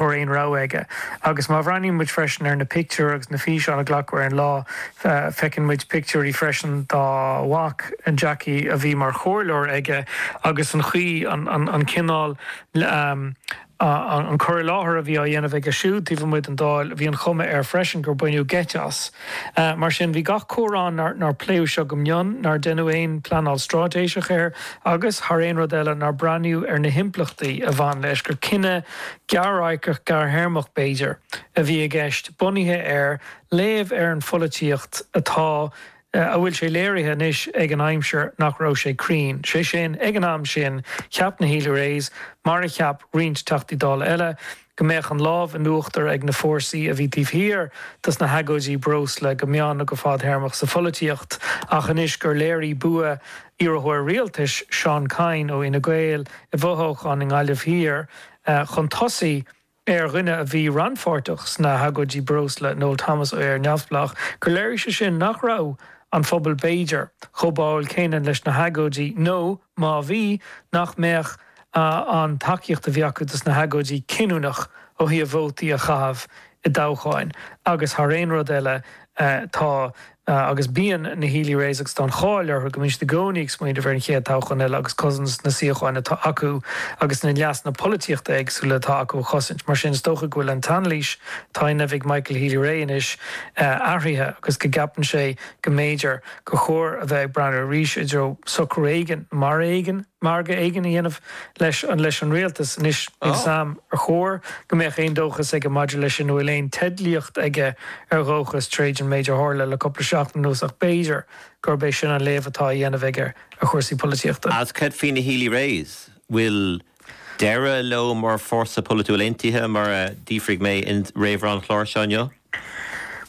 mórán rogha aige. Agus má bhreathnaíonn muid freisin ar na pictiúir agus na físeáin a glacadh ar an lá, feiceann muid pictiúirí freisin dá mhac, Jackie, a bhí mar chomhairleoir aige agus an chaoi, an cineál, an cur i láthair a bhí á dhéanamh aige siúd taobh amuigh den Dáil, bhí an chuma air freisin gur baineadh geit as. Mar sin, bhí gach comhartha ann nár pléadh seo go mion, nár deineadh aon phleanáil stráitéiseach air agus, thar aon rud eile, nár breathnaíodh ar na himpleachtaí a bhain leis, gur cinneadh gearr-radharcach, gearr-théarmach b'fhéidir, a bhí i gceist, bunaithe ar léamh ar an pholaitíocht atá, a bhfuil sé léirithe anois ag an aimsir nach raibh sé cruinn. Sé sin, ag an am sin, cheap na Healy-Raes, mar a cheap roinnt Teachtaí Dála eile, go mbeadh an lámh in uachtar ag na fórsaí a bhí taobh thiar de sna hagóidí breosla go meán nó go fadthéarmach sa pholaitíocht ach anois gur léirigh bua iarrthóir rialtais, Seán Kyne ó Fhine Gael, i bhfothoghchán i nGaillimh Thiar chun tosaigh ar dhuine a bhí rannpháirteach sna hagóidí breosla, Noel Thomas ó Éire Neamhspleách, gur léirigh sé sin nach raibh an phobal b'fhéidir chomh báuil céanna leis na hagóidí nó, Má bhí, nach mbeadh an tacaíocht a bhí acu dos na hagóidí cinniúnach ó thaobh vótaí a chaitheamh i dtoghcháin agus thar aon rud eile tá agus bíonn na Healy Raes agus tá an cháil orthu go mbíonn siad i gcónaí ag smaoineamh ar an chéad toghchán eile agus cosaint na suíocháin atá acu agus na leasanna polaitíochta éagsúla atá acu a chosaint. Mar sin is dócha go bhfuil an t-anailís atá á dhéanamh ag Michael Healy Rae anois athraithe agus go gceapann sé go mb'fhéidir gur chóir a bheith ag breathnú arís i dtreo socrú éigin, mar éigin, margadh éigin a dhéanamh leis an leis an Rialtas. Anois, níl a fhios agam ar chóir go mbeadh aon dóchas aige maidir leis sin, nó an bhfuil aon teidlíocht aige ar dhóchas, tar éis an méid a tharla le cúpla seachtain anuas, ach b'fhéidir gurb é sin an léamh atá á dhéanamh aige ar chúrsaí polaitíochta. Agus cad faoi na Healy-Raes, an bhfuil. deireadh leo mar fórsa polaitiúil aontaithe, mar a d'fhiafraigh mé i réamhrá an chláir seo inniu?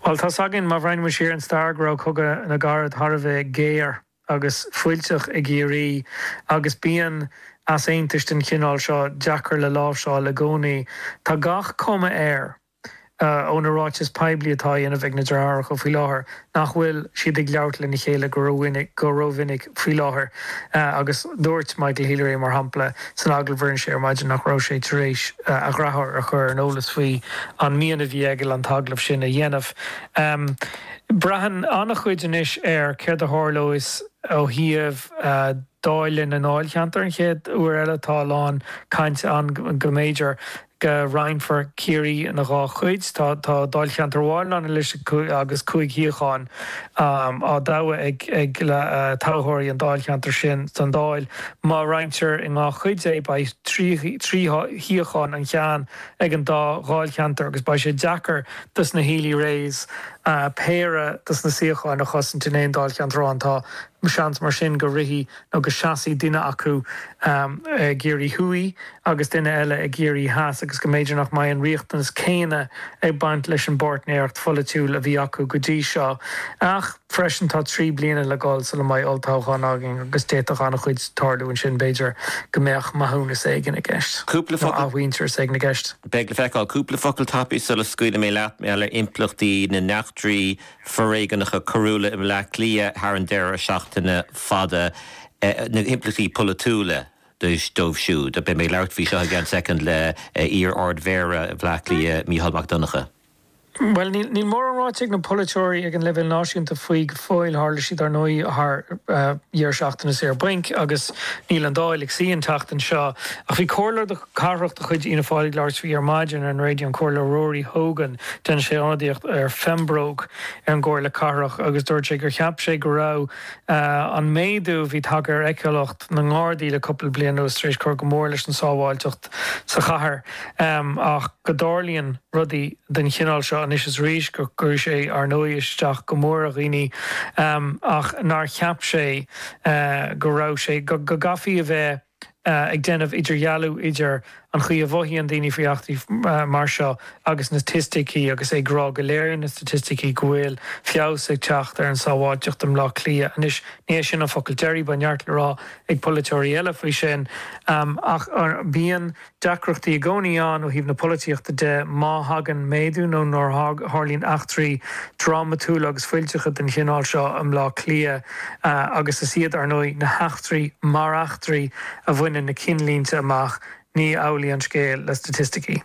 Bhuel, tá's againn, má bhreathnaímid siar ar an stair, go raibh Cogadh na gCarad thar a bheith géar agus fuilteach i gCiarraí agus bíonn easaontais den chineál seo deacair le láimhseáil i gcónaí. Tá gach cuma air, ó na ráitis poiblí atá á dhéanamh ag na deartháireacha faoi láthair, nach bhfuil siad ag labhairt lena chéile go rómhinic faoi láthair agus dúirt Michael Healy-Rae, mar shampla, san agallamh a rinne sé ar maidin nach raibh sé tar éis a dhreatháir a chur ar an eolas faoi an mian a bhí aige an t-agallamh sin a dhéanamh. Braitheann an-chuid anois ar céard a tharlós ó thaobh dáileadh na ndáilcheantar an chéad uair eile, tá a lán cainte ann go mb'fhéidir, go roinnfear Ciarraí ina dhá chuid. Tá dáilcheantar amháin ann anois agus cúig shuíochán á dtoghadh ag toghthóirí an dáilcheantair sin don Dáil. Má roinntear ina dhá chuid é, beidh trí shuíochán an ceann ag an dá dháilcheantar, agus beidh sé deacair dos na Healy-Raes péire dos na suíocháin a chosaint in aon dáilcheantar amháin. Tá seans mar sin go rithfidh agus seasfaidh duine acu i gCiarraí Thuaidh agus duine eile i gCiarraí Theas agus go mb'fhéidir nach mbeidh an riachtanas céanna ag baint leis an bpáirtnéireacht pholaitiúil a bhí acu go dtí seo. Ach freisin tá trí bliana le dhul sula mbeidh olltoghchán againn agus d'fhéadfadh an-chuid tarlú ansin, b'fhéidir go mbeadh maithiúnas éigin i gceist, nó athmhuintearas éigin i gceist. Beidh le feiceáil. Cúpla focal tapaidh sula scaoilfidh mé leat, mar gheall ar impleachtaí na n-eachtraí foréigeanacha coiriúla i mBleá Cliath thar an deireadh seachtaine fada, na himpleachtaí polaitiúla dóibh siúd. Beidh mé ag labhairt faoi seo i gceann soicind le iar-Ard-Mhéara Bhleá Cliath, Mícheál Mac Donncha. Bhuel, níl mórán ráite ag na polaiteoirí ag an leibhéal náisiúnta faoi go fóill. Tharla siad, ar ndóigh, thar dheireadh seachtaine saor bainc agus níl an Dáil ag suí an tseachtain seo. Ach bhí comhairleoir cathrach de chuid Fhianna Fáil ag labhairt faoi ar maidin ar an raidió, an Comhairleoir Rory Hogan. Déanann sé ionadaíocht ar Phembróc ar an gComhairle Cathrach agus dúirt sé gur cheap sé go raibh an méadú a bhí tagtha ar fheiceálacht na nGardaí le cúpla bliain anuas tar éis cur go mór leis an tsábháilteacht sa chathair ach go dtarlaíonn rudaí den chineál seo anois is arís, go gcuireann sé, ar ndóigh, isteach go mór ar dhaoine ach nár cheap sé go raibh sé, go gcaithfí a bheith ag déanamh idirdhealú idir an chaoi a mhothaíonn daoine faoi eachtraí mar seo agus na staitisticí agus ag rá go léiríonn na staitisticí go bhfuil feabhas ag teacht ar an sábháilteacht i mBleá Cliath. Anois, ní hé sin an focal deiridh, beidh neart le rá ag polaiteoirí eile faoi sin ach bíonn deacrachtaí i gcónaí ann ó thaobh na polaitíochta de má thagann méadú nó nuair a tharlaíonn eachtraí drámatúla agus fuilteacha den chineál seo i mBleá Cliath agus is iad, ar ndóigh, na heachtraí mar eachtraí a bhaineann na cinnlínte amach, ní hamhlaidh an scéal le staitisticí.